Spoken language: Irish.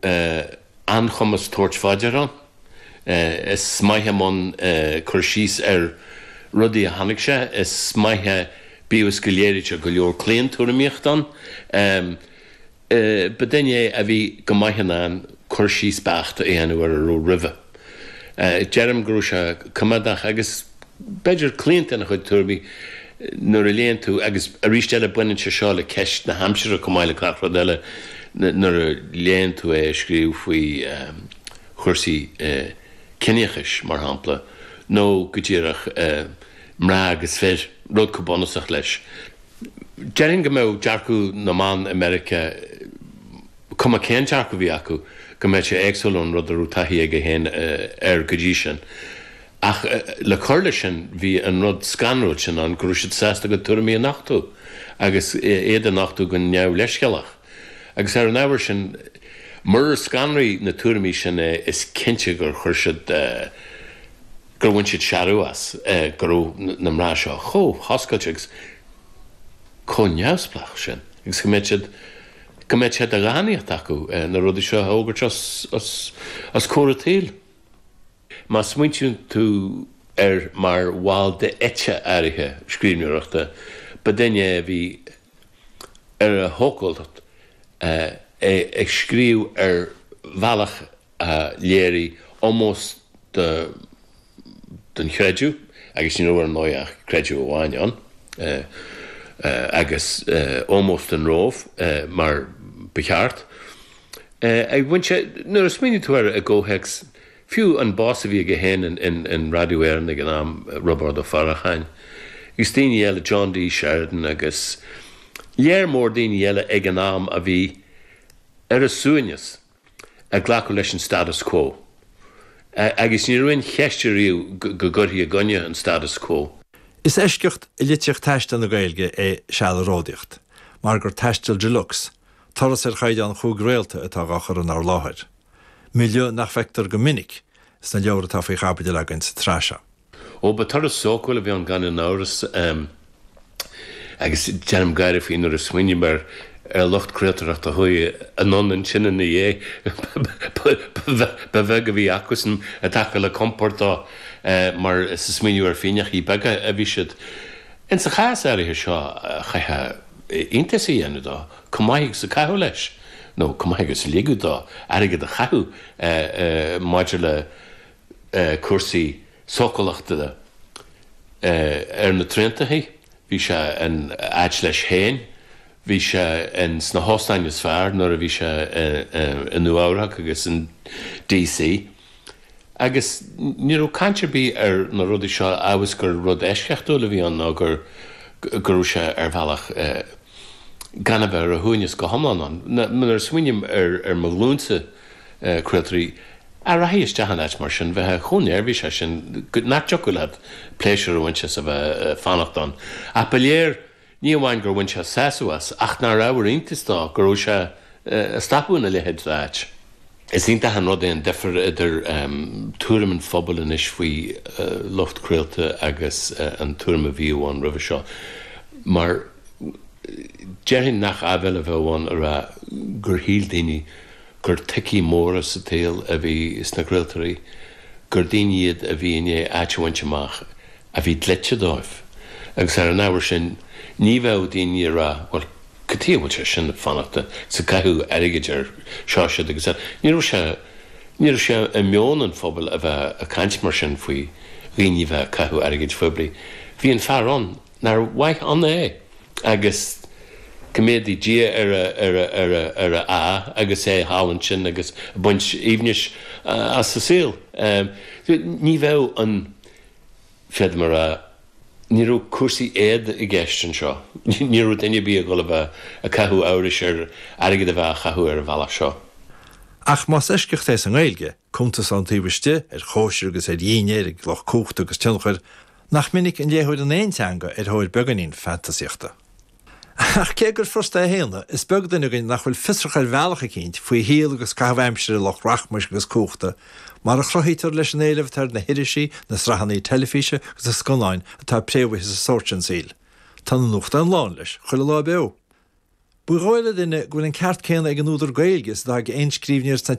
an-chumas tabhairt faoi deara ann. Is maith é i mbun cur síos ar rudaí a chonaic sé. Is maith é, bíodh is go léirítear go leor claontuairimíocht ann, ba duine é a bhí go maith in ann cur síos beacht a dhéanamh ar a raibh roimhe. Déarfainn go raibh sé coimeádach, agus b'fhéidir claonta ina chuid tuairmí, nuair a léann tú, agus arís eile baineann sé seo le ceist na haimsire chomh maith le gach rud eile, nuair a léann tú é ag scríobh faoi chúrsaí ciníochais, mar shampla, nó go díreach mná agus fir, rud chomh bunúsach leis. Déarfainn go mbeadh dearcadh na mban i Meiriceá. cuma cén dearcadh a bhí acu, go mbeadh sé éagsúil ón rud a raibh taithí aige féin air go dtí sin. Ach le cur leis sin, bhí an rud scanrúil sin ann go raibh siad sásta a gcuid tuairimí a nochtú, agus iad a nochtú go neamhleithscéalach. Agus ar an ábhar sin, murar scanraigh na tuairimí sin é, is cinnte gur chuir siad, gur bhain siad searradh as, go raibh na mná seo chomh hoscailte agus chomh neamhspleách sin, agus go mbeadh siad. go mbeadh sé de dhánaíocht acu na rudaí seo a fhógairt os comhair an tsaoil. Má smaointíonn tú air mar bhall d'eite áirithe scríbhneoireachta, ba duine é a bhí ar a shócúlacht ag scríobh ar bhealach a léirigh ómós don chreideamh agus ní raibh ar ndóigh ach creideamh amháin ann agus ómós don Róimh mar ba cheart a bhain sé nuair a smaoiníonn tú air i gcomhthéacs fiú an boss a bhí aige féin in Radio Éireann ag an am Roibeárd Ó Faracháin agus daoine eile John D Sheridan agus léar mór daoine eile ag an am a bhí ar a suaimhneas ag glacadh leis an status quo. Agus ní raibh aon cheist ariamh go gcuirfí i gcoinne an status quo. Is eisceacht i litríocht taistil na Gaeilge é Seal ag Ródaíocht, mar gur taisteal de luxe, turas ar chaighdeán chúig réalta atá dhá chur inár láthair, milieu nach bhfeictear go minic sna leabhair atá faoi chaibidil againn sa tsraith seo. Ó, ba turas sócúil a bhí ann gan aon amhras, agus déanaim gáire faoi nuair a smaoiním ar an lucht craoltóireachta a chuaigh anonn ansin ina dhiaidh. Ba bheag a bhí acusan i dtaca le compord dó, mar is ag smaoineamh ar phingineachaí beaga a bhí siad. Ins an chás áirithe seo chaithfeá iontas a dhéanamh de chomh maith agus a caitheadh leis, nó chomh maith agus a ligeadh dó airgead a chaitheamh maidir le cúrsaí sócúlachta ar na traenacha, bhí sé in áit leis féin, bhí sé in sna hóstáin is fearr nuair a bhí sé i Nua Eabhrach agus in DC. Agus ní raibh caint ar bith ar na rudaí seo abhus gur rud eisceachtúil a bhí ann nó gur go raibh sé ar bhealach gan a bheith ar a shuaimhneas go hiomlán ann. Nuair a smaoiním ar mo ghlúinse, craoltóirí a rachadh isteach in áit mar sin bheith chomh neirbhíseach sin go nach dtiocfadh leat pléisiúr a bhaint as a bheith ag fanacht ann. Ach ba léir, ní amháin gur bhain sé sásamh as, ach nár ábhar iontais dó go raibh sé ag stopadh ina leithéid d'áit. Is iontach an rud é an difear idir tuairim an phobail anois faoi lucht craolta agus an tuairim a bhíodh ann roimhe seo, mar, Déarfainn nach aibhéil a bheadh ann a rá gur shíl daoine gur toicí móra sa tsaol a bhí sna craoltóirí, gur daoine iad a bhí i ndiaidh áit a bhaint amach a bhí dlite dóibh. Agus ar an ábhar sin, ní bheadh daoine ag rá, bhuel, cad chuige a bhfuil sé sin ag fanacht, is ag caitheamh airgid ar seo, siúd agus eile. Ní raibh sé, ní raibh sé i meon an phobail a bheith ag caint mar sin faoi dhaoine a bheith ag caitheamh airgid phoiblí. Bhí an fear ann, Nár mhaith ann é? Agus coimeádaí Dia ar a, ar a, ar a, ar a, a, agus é thall ansin agus ag baint aoibhnis as an saol. Ní bheadh an, féadaim a rá,, ní raibh cúrsaí éad i gceist anseo. Ní raibh duine ar bith ag dhul a bheith ag caitheamh amhrais ar airgead a bheith á chaitheamh ar an bhealach seo. Ach más eisceacht é sa nGaeilge, cuntas ón taobh istigh ar chóisir agus ar dhínnéir ag lucht cumhachta agus tionchair, Nach minic an léitheoir in aon teanga ar thóir beagáinín fantasaíochta? Ach cé gur furasta é a shéanadh, is beag duine againn nach bhfuil fiosrach ar bhealach eicínt faoi shaol agus caitheamh aimsire lucht rachmais agus cumhachta, mar a chruthaítear leis an éileamh atá ar na hirisí, na sraitheanna teilifíse agus na scannáin atá préamhaithe sa sórt sin saoil. Tá na nuachtáin lán leis, chuile lá beo. Ba dhóigh le duine go bhfuil an ceart céanna ag an údar Gaeilge is atá ag aon scríbhneoir sna.